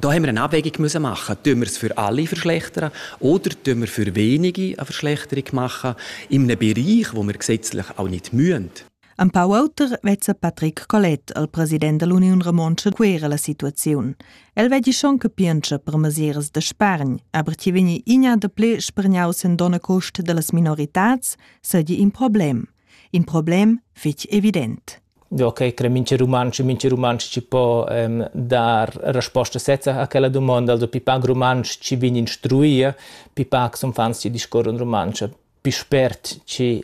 Da haben wir eine Abwägung müssen machen. Tun wir es für alle verschlechtern oder tun wir für wenige eine Verschlechterung machen in einem Bereich, wo wir gesetzlich auch nicht müssen. Ein paar Auter vezza Patrick Collet al president dell'Union Romontsch quera la situaziun. El vedi schon che piensa per mesiras da spargn, aber ti veni igna da ple spargnaus en dona cost de las minoritats, sedi in problem. In problem fitch evident. Okay, cre mincha rumantsch e mincha rumantsch chi po, dar resposta sezza a quella dumonda, also pi pac rumantsch chi vegn instruì, pi pac sun fans chi discorran rumantsch, pi spert chi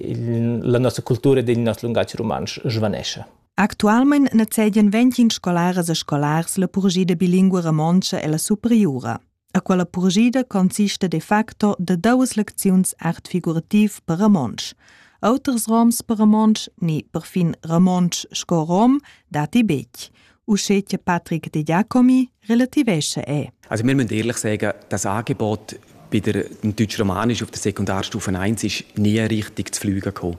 la nossa cultura ed il nos lungatg rumantsch svanescha. Actualmain nezegian ventgin scolaras e scolars la purgia da bilingua romontscha e la superiura. A quella purgida consista de facto de duas lecziuns art figurativ per Ramonsch. Auters roms per Ramonsch, ni perfin Ramonsch sco rom, dati bec. Usche che Patrick de Giacomi relativesce è. Also wir müssen ehrlich sagen, das Angebot bei der, dem Deutsch-Romanisch auf der Sekundarstufe 1 ist nie richtig zu fliegen gekommen.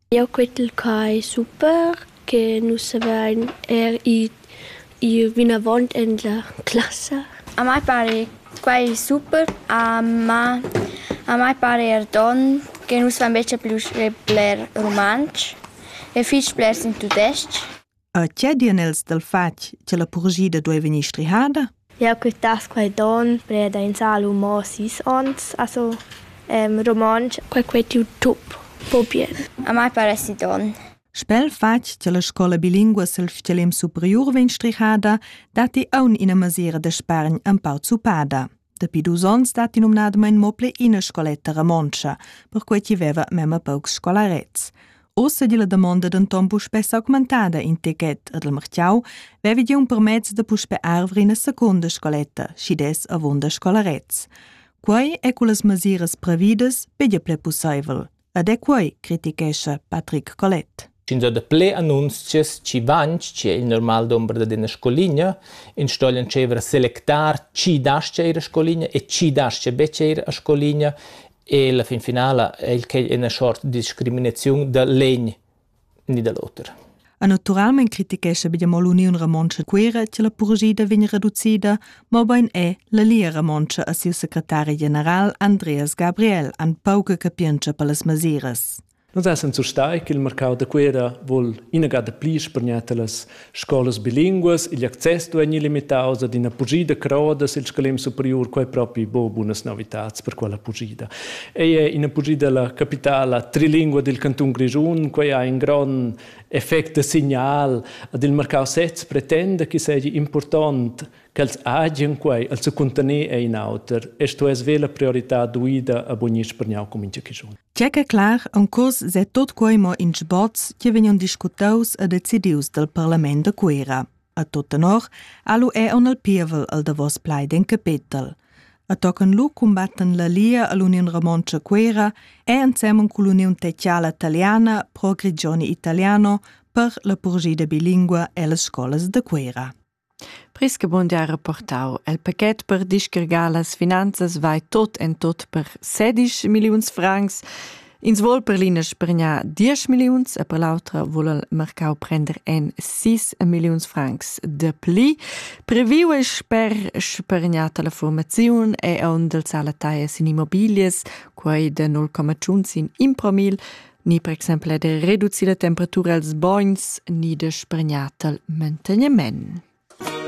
Jeu quetel qua ei super che nus savein er id ir vinavon en la classa. A mai pare quai super, ma a mai pare er donn che nus fan becha plü sch bler rumantsch e fich blers in tudesc-ch. E che dian els dal fatg che la purgida duei vegnir strihada? Jau quitass quai don preda in salu mo sis ons, also em, romontsch. Quai quei tiu tup, po bien. A mai paresi don. Spel fatg che la scola bilingua sil fcelem superiur vegn strihada, datti aun ina masira da spargn empau zupada. Dapi dus onns datti numnadamain mo pli ina scoletta romontscha, perquai ch'i veva memma paucs scolarets. Ussa di la damonda denton puspè s'augmentada in techet ad il Martiau, vevi di un permezz da puspè arvere ina secunda scoletta, schi des avunda scolarets. Quai è cu las masiras previdas pedia ple pussaivel, Ed è quai, critichescha Patrick Collet. Ins ha daplè annunzias chi van che il normal dumber dad ina scoligna, ins stogl entscheiver a selectar chi dascha ir a scoligna e chi dascha betg ir a scoligna e la fin finala è il ina short discriminaziun da legn ni da l'oter. E naturalmein critichescha be mo l'Uniun Romontscha Cuira che la purgida vegn reducida, mobein è la Lia Romontscha a siu secretari general Andreas Gabriel an pauca capientscha per las masiras. Nus essan surstai che il marcau da Cuera vol inagada pli spargnar talas Scolas bilinguas, igl access dueigni limitaus ad ina pugida croda sil scalem superiur, quei propi bo bunas novitads per quella pugida. Ei è ina pugida la capitala trilingua dil cantun Grischun, quei ha in gron effect da signal ad il marcau sez pretenda che seigi impurtont ch'els hagian quei al secuntaner è in auter e sto es ve la priorità duida a bugnir spergnau com in chischun. Tgè che clar, un cos se tot quei mo in sboz che vegnan discutaus e decidius dal parlament da Cuera. A tot tenor, alu è on al pievel al davos pleiden capetel. A tocan lu combatten la Lia all'Union Romontcha Cuera e ansemmen con l'Union Tecciala Italiana Pro Grigioni Italiano per la purgida bilingua e las scolas de Cuera. Prischebund ha reportau el paquet per discargar las finanzas vai tot en tot per sedisch milliuns francs. Ins vuol per l'ina spergnar diesch milliuns e per l'autra vuol el marcau prender en sis milliuns francs de pli. Previu ei sper spergnar tala formaziun è onn del sala taias in immobilias, quei de 0,1 sin impromil, ni per exempel er de reducir la temperatura els bogns ni de spregnar tal mantegniment.